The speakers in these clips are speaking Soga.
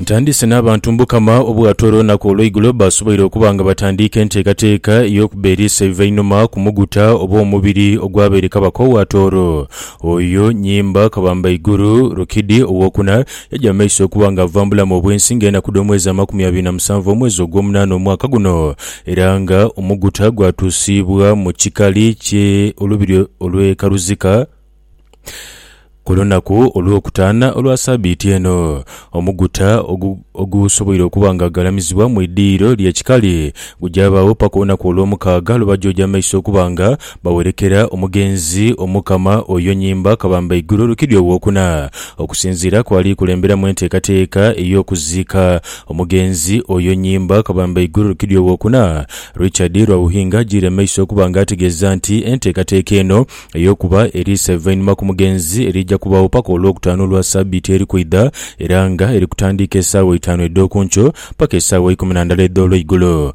Ntandise n'abantu Mukama obwatoola olunaku olw'eigulo baasoboire okuba nga batandiika enteekateeka ey'okuba eriisa eiva einhuma ku muguta oba omubiri ogwabaire kabaka owa Tooro. Oyo Nyimba Kabambaiguru Rukidi owokuna Yaja mu maiso okuba nga ava mu bulamu obw'ensi nga enaku dh'omwezi amakumi abiri na musanvu omwezi ogw'omunaana omwaka guno, era nga omuguta gwatuusiibwa mu kikali kye olubiri olw'e Karuzika ku lunaku olw'okutaana olwa sabiiti eno. Omuguta ogu ogusoboire okuba nga galamizibwa mu idhiyiro ly'ekikali gujabaagho paka olunaku olw'omukaaga lwe baja oja mu maiso okuba nga Bawerekera omugenzi Omukama oyo nyimba kabamba eigulu lukidi owokuna. Okusinziira kwali kulemberamu enteekateeka ey'okuziika omugenzi oyo nyimba kabamba eigulu lukidi owokuna, Richard Rwauhinga ajiire mu maiso okuba nga ategeeza nti enteekateeka eno ey'okuba eriiso eivainhuma ku mugenzi eriija kubaagho paka olwokutaanu lwa sabiiti eri kwidha era nga eri kutandiika esaawa eitaanu edh'okunkyo paka esaawa eikumi na ndala edh'olweigulo.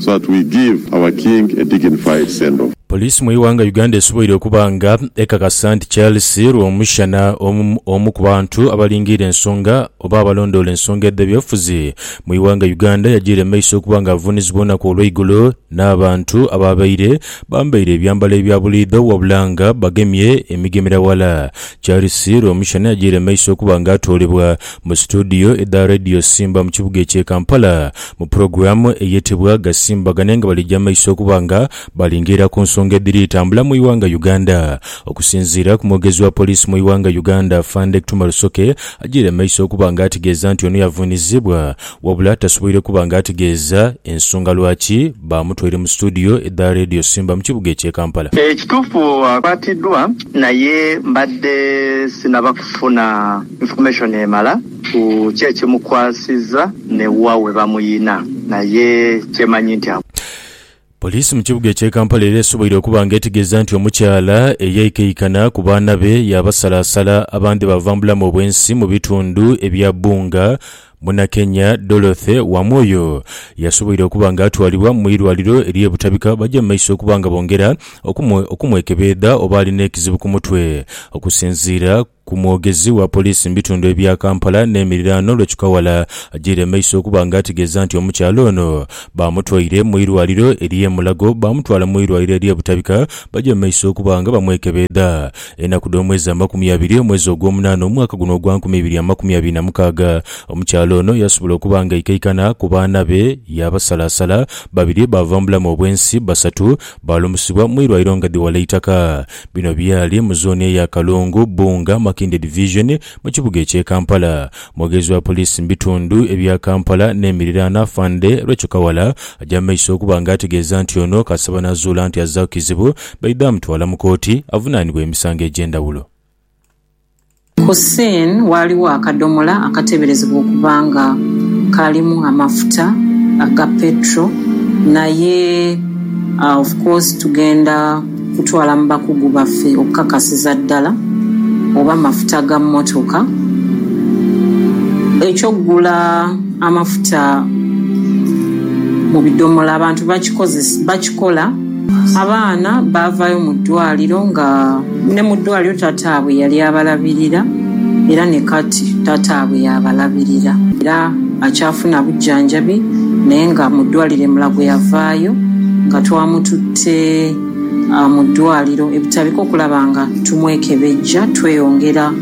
so that we give our king a dignified send off. Poliisi mu ighanga Uganda esoboire okuba nga ekakasa nti Charles Rwomushana omu ku bantu abalingiire ensonga oba abalondoola ensonga edhebyobufuzi mu ighanga Uganda yajiira mu maiso okuba nga avuunizibwa olunaku olweigulo n'abantu abaabaire bambaire ebyambalo ebya buliidho wabulanga bagemye emigemera wala. Charles Rwomushana yajiira mu maiso okuba nga atoolebwa Mu situdiyo edha Radio Simba mu kibuga ekye Kampala mu pulogulaamu eyetebwa Gasimbagane nga bali gyamaiso okuba nga balingeera ku nsonga edhiri tambula mu ighanga Uganda. Okusinziira ku mwogezi wa poliisi mu ighanga Uganda Afande Kthuma Rusoke ajiire maiso okuba nga ategeeza nti ono yavunizibwa wabula tasoboire kuba nga ategeeza ensonga lwaki bamutwaire mu situdiyo edha Radio Simba mu kibuga ekye Kampala. Ekitufu akwatiddwa naye mbadde sinaba kufuna. Information emala ku ki ekimukwasiza ne wa webamuyina naye kyemanyi nti a. Poliisi mu kibuga eky'e Kampala era esoboire okuba nga etegeeza nti omukyala eyaikaikana ku baana be yaabasalaasala abandhi baava mu bulamu obw'ensi mu bitundu ebya Bunga, Munakenya Dorothy Wamwoyo yasoboire okuba nga atwalibwa mu irwaliro ery'e Butabika baje mu maiso okuba nga bongera okumwekebeedha oba alina ekizibu ku mutwe okusinziira ku mwogezi wa poliisi mu bitundu ebya Kampala n'emiriraano Lwech Kawala agyeire amaiso okuba nga ategeeza nti omukyala ono baamutwaire mu irwaliro ery'e Mulago baamutwala mu irwaliro ery'e Butabika bagya mu maiso okuba nga bamwekebeedha enaku dh'omwezi amakumi abiri omwezi ogw'omunaana omwaka guno ogwa nkumi ibiri amakumi abiri na mukaaga omukyala ono yasobola okuba nga aikaikana ku baana be yaabasalaasala babiri baava mu bulamu obw'ensi basatu baalumusibwa mu irwaliro nga dhi wala eitaka Bino byali mu zooni eya Kalungu, Bbunga, Makindye Division mu kibuga eky'e Kampala. Mwogezi wa poliisi mu bitundu ebya Kampala n'emiriraano Afande Rachael Kawala aja mu maiso okuba nga ategeeza nti ono kasaba n'azuula nti azzaaku kizibu, baidha mutwala mu kooti avunaanibwe emisango egy'endhawulo. Ku scene waaliwo akadomola akateberezebwa okuba nga kaalimu amafuta aga petrol naye of course tugenda kutwala mu bakugu baffe okukakasiza ddala oba mafuta ga mmotoka. Eky'okugula amafuta mu bidomola abantu bakikozesa, bakikola. Abaana baavaayo mu ddwaaliro nga ni mu ddwaaliro tataabwe yali abalabirira era ni kati tataabwe y'abalabirira era akyafuna bujjanjabi naye nga mu ddwaaliro e Mulago yavaayo nga twamututte mu ddwaaliro e Butabika okulaba nga tumwekebejja tweyongera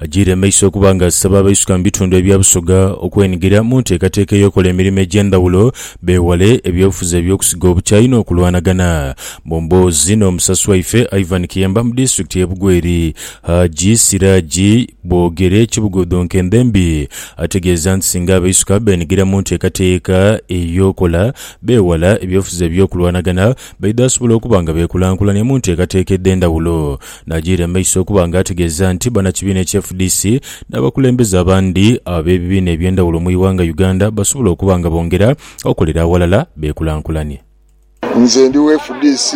Ajiire maiso okuba nga asaba abaisuka mu bitundu ebya Busoga okwenigira mu nteekateeka ey'okola emirimo egy'endhawulo beewale ebyobufuzi eby'okusiga obukyayi n'okulwanagana. Mu mboozi n'omusasi waife Ivan Kiyemba mu disitulikiti y'e Bugweri, Haji Siraji Bwogere Kibugodo Nkendhembi ategeeza nti singa abaisuka beenigira mu nteekateeka ey'okola beewala ebyobufuzi eby'okulwanagana baidha sobola okuba nga beekulankulania mu nteekateeka edh'endhawulo N'ajiira mu maiso okuba nga ategeeza nti bannakibiina ekya fdc n'abakulembeze abandi ab'ebibiina eby'endhawulo mu ighanga Uganda basobola okuba nga bongera okolera aghalala beekulankulanye. Nze ndi wa fdc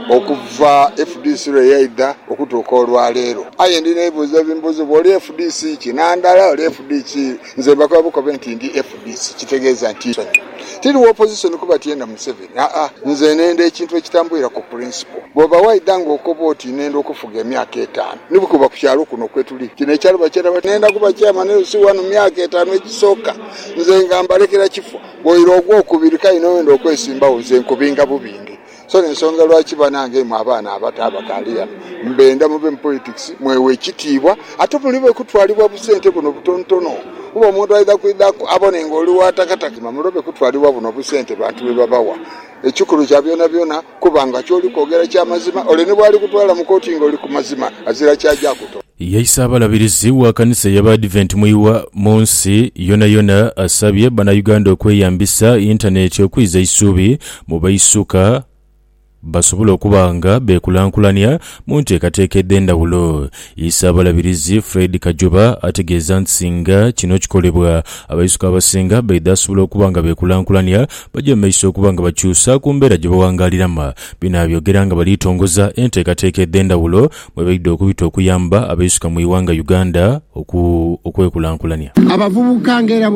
okuva fdc lwe yaidha okutuuka olwaleero. Aye ndina ebibuuzo ebimbuuzibwa, oli fdc ki? Nandala, oli fdc Nze mbakoba bukobe nti ndi fdc kitegeeza nti nsonyi. Tiri wa opposition kuba tiyenda Museveni aa nze nenda ekintu ekitambulira ku principle. Bwoba waidha nga okoba oti nenda okufuga emyaka etaanu ni bwekuba ku kyalo kuno kwetuli kino ekyalo bakyeta batya? Nenda kuba chairman LC wano mu myaka etaanu egisooka nze nga mbalekera kifo bwoira ogwokubiri kale nowenda okwesimbawo nze nkubinga bubinge. So n'ensonga lwaki banange imwe abaana abato abakaali ghano mbenda muve mu politics mwewe ekitiibwa ate mulobe kutwalibwa busente buno obutonotono kuba omuntu aidha kwidha abone nga oli wa takatakima mulobe kutwalibwa buno obusente bantu bwe babawa ekikulu kya byonabyona kuba nga ky'oli kwogera kya mazima ole ni bw'ali kutwala mu kooti nga oli ku mazima azira ky'aja kutola. Ye Isaabalabirizi wa kanisa ey'Abaadiventi mu Iwa mu nsi yonayona asabye Bannayuganda okweyambisa yintaneeti okwiza eisuubi mu baisuka basobole okuba nga beekulankulania mu nteekateeka edh'endhawulo. Isaabalabirizi Fred Kajoba ategeeza nti singa kino kikolebwa, abaisuka abasinga baidha asobola okuba nga beekulankulania baje mu maiso okuba nga bakyusa ku mbeera gye bawangaaliramu. Bino abyogera nga bali tongoza enteekateeka edh'endhawulo mwebaidha okubita okuyamba abeisuka mu ighanga Uganda okwekulankulania. Abavubuka nga era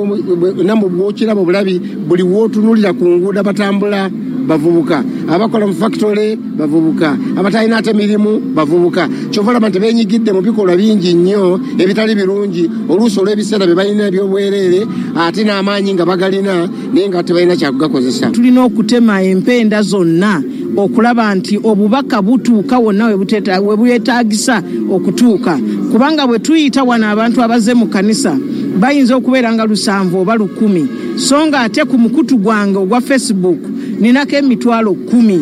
namwo bwokiraba obulabi buli wotunulira ku nguudo abatambula bavubuka, abakola mu fakitole bavubuka, abatalina ate mirimu bavubuka kyova olaba nti benyigidde mu bikolwa bingi nnyo ebitali birungi oluusi olw'ebiseera bye balina eby'obwereere ate n'amaanyi nga bagalina. naye nga tebalina kya kugakozesa. Tulina okutema empenda zonna okulaba nti obubaka butuuka wonna we bwetaagisa okutuuka kubanga bwe tuyita wano abantu abaze mu kkanisa bayinza okubeera nga lusanvu oba lukumi so nga ate ku mukutu gwange ogwa Face Book ninako emitwalo kkumi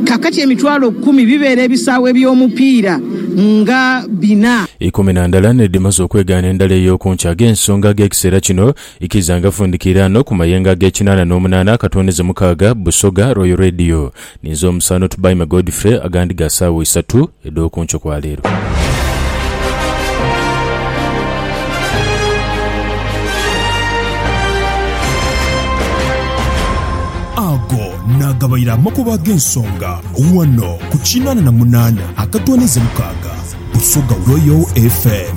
kaakati emitwalo kkumi bibeera ebisaawe by'omupiira nga bina. Ikumi na ndala n'edhimaze okwegaana endala ey'okunkya. Ag'ensonga ag'ekiseera kino. Ikiriza nga fundikiira ano ku mayengo ag'ekinaana n'omunaana akatooneze mukaaga, Busoga, Royal Radio. Ninze omusaano Tubaime Godfrey, agandi ga saawa isatu edh'oku nkyo kwa leero. Ago naagabaire amakubo ag'ensonga ghano ku kinaana na munaana akatooneze mukaaga, Busoga Royal FM.